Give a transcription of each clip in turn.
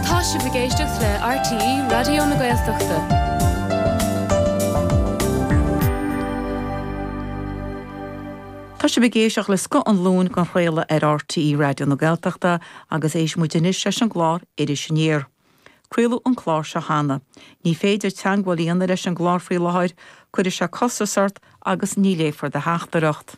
Tá sibh ag éisteacht le RTÉ Raidió na Gaeltachta. Tá sibh ag éisteacht le Scoth an Luain dhá chraoladh ar RTÉ Raidió na Gaeltachta agus éistfidh muid anois leis an gclár Iris Aniar. Craoladh an clár seo cheana. Ní féidir teagmháil a dhéanamh leis an gclár faoi láthair, cuirfidh sé costas ort agus ní léifear do theachtaireacht.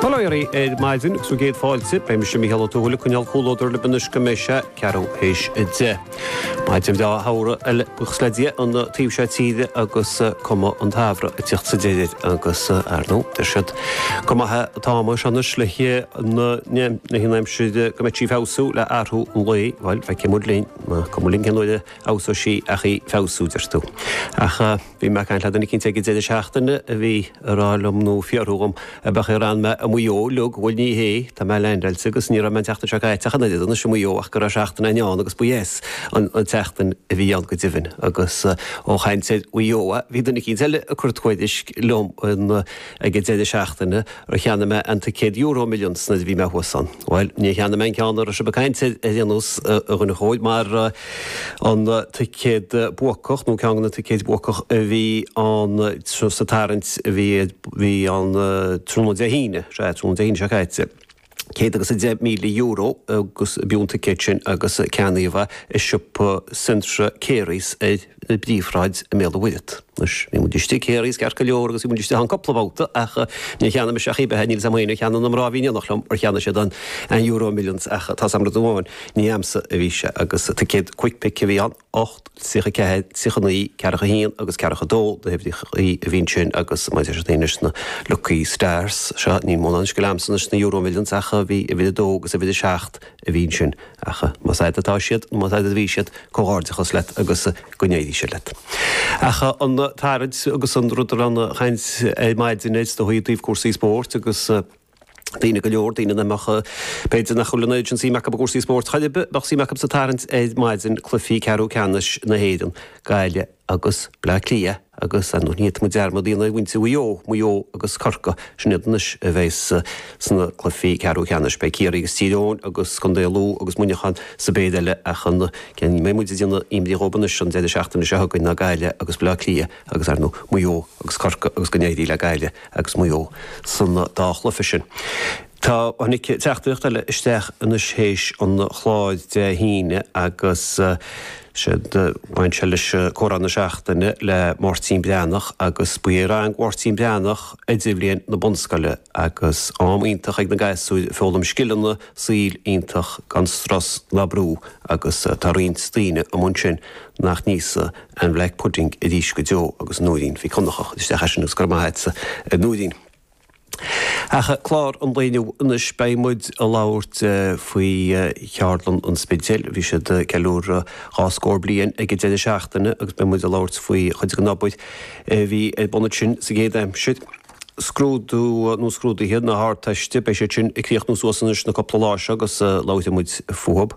Hello ar maidin agus céad fáilte. Beidh mise, Mícheál Ó Tuathail, ag coinneáil comhluadar libh anois go mbeidh sé ceathrú théis a deich. Maidin bhreá shamhraidh eile buíochas le Dia an taobh seo tíre agus cuma an tsamhraidh ag tíocht sa deireadh agus, ar ndóigh, deir siad gur maith atá an aimsir anois le haghaidh an aimsir go mbeidh sí ag feabhsú le athrú an lae. Bhuel, feicfidh muid linn. Cuma linn cén uair a fheabhsóidh sí ach í feabhsú, deir tú. Ach. Bhí mé ag caint le duine éicint ag an deireadh seachtaine a bhí ag rá liom nó ag fiafraí dhíom ab ea an raibh mé i Maigh Eo uilig, bhuel ní hé, tá mé leaindeáilte agus ní raibh mé an tseachtain seo caite ach an oiread anois i Maigh Eo ach go raibh seachtain eile ann agus ba dheas an tseachtain a bhí ann go deimhin agus ó ag caint ar Mhaigh Eo bhí duine éicint eile ag cur tuairisc liom an Ag an deireadh seachtaine, ar cheannaigh mé an ticéad EuroMillions nuair a bhí mé thuas ann? Bhuel, níor cheannaigh mé an ceann a raibh sibh ag caint ar aon nós, a dhuine chóir, mar an ticéad buacach, nó ceann de na ticéid buacach a bhí ann sa tarraingt a bhí ann tráthnóna Dé hAoine, sea, tráthnóna Dé hAoine seo caite. céad agus a deich míle euro ab fhiú an ticéad sin agus ceannaíodh é i siopa Centra Carey's ar an bpríomhshráid i mBéal an Mhuirthead. Anois, bhí muid istigh i Carey's ceart go leor agus bhí muid istigh ann cúpla babhta ach níor cheannaigh mise ach pé ar bith é níl fhios a'm faoi ar cheannaigh na mná a bhí in éineacht liom ar cheannaigh siad an Euro Millions ach tá fhios a'm rud amháin, ní a'amsa a bhí sé agus ticéad Quick Pick a bhí ann. 8, 34, 39, Ceathracha 1 agus Ceathracha 2 na huimhreacha a bhí ansin agus maidir leis ansin na Lucky Stars seo, ní mórán scil a'amsa anois sna Euromillions ach bhí uimhir 2 agus uimhir 7 a bhí ansin ach más a'd atá siad nó más a'd a bhí siad, comhghairdeachas leat agus go n-éirí sé leat. Ach an tarraingt agus an rud a raibh an chaint ar maidin air is dóigh i dtaobh cúrsaí spóirt agus. daoine go leor, daoine nach mbeadh, b'fhéidir nach bhfuil an oiread sin suim acu i gcúrsaí spóirt ach bheadh suim acu sa tarraingt ar maidin, cluichí ceathrú ceannais na hÉireann, Gaillimh agus Bleá Cliath agus ar ndóigh ní dhéanfaidh muid dearmad ar mhuintir Mhaigh Eo, Maigh Eo agus Corcaigh, sin iad anois a bheas sna cluichí ceathrú ceannais. Beidh Ciarraí agus Tír Eoghain agus Contae Lú agus Muineachán sa bpéire eile ach a mbeidh muid ag déanamh imní dhóibh anois an deireadh seachtaine seo chugainn ná Gaillimh agus Bleá Cliath agus ar ndóigh Maigh Eo agus Corcaigh agus go n-éirí le Gaillimh agus Maigh Eo san dá chluiche sin. Tá tháinig teachtaireacht eile isteach anois théis an chláir Dé hAoine agus séard a bhain sé leis Comhrá na Seachtaine le Máirtín Breathnach agus ba é rang Mháirtín Breathnach Idirbhliain na bunscoile agus am iontach ag na gasúir ag foghlaim scileanna saoil iontach gan strus ná brú agus tá roinnt daoine amuigh ansin nach n-íosfaidh aon bhlack pudding arís go deo agus Nóirín Mhic Dhonnchadha isteach é sin agus go raibh maith agatsa a Nóirín. Ach clár an lae inniu anois beidh muid ag labhairt faoi Cheardlann an Spidéil. Bhí siad ag ceiliúradh dhá scór bliain ag an deireadh seachtaine agus beidh muid ag labhairt faoi chuid den obair a bhí ar bun ansin sa gcéad aimsir. Scrúdú nó scrúduithe na hArdteiste, beidh siad sin ag críochnú suas anois na cúpla lá seo agus labhróidh muid fúthu.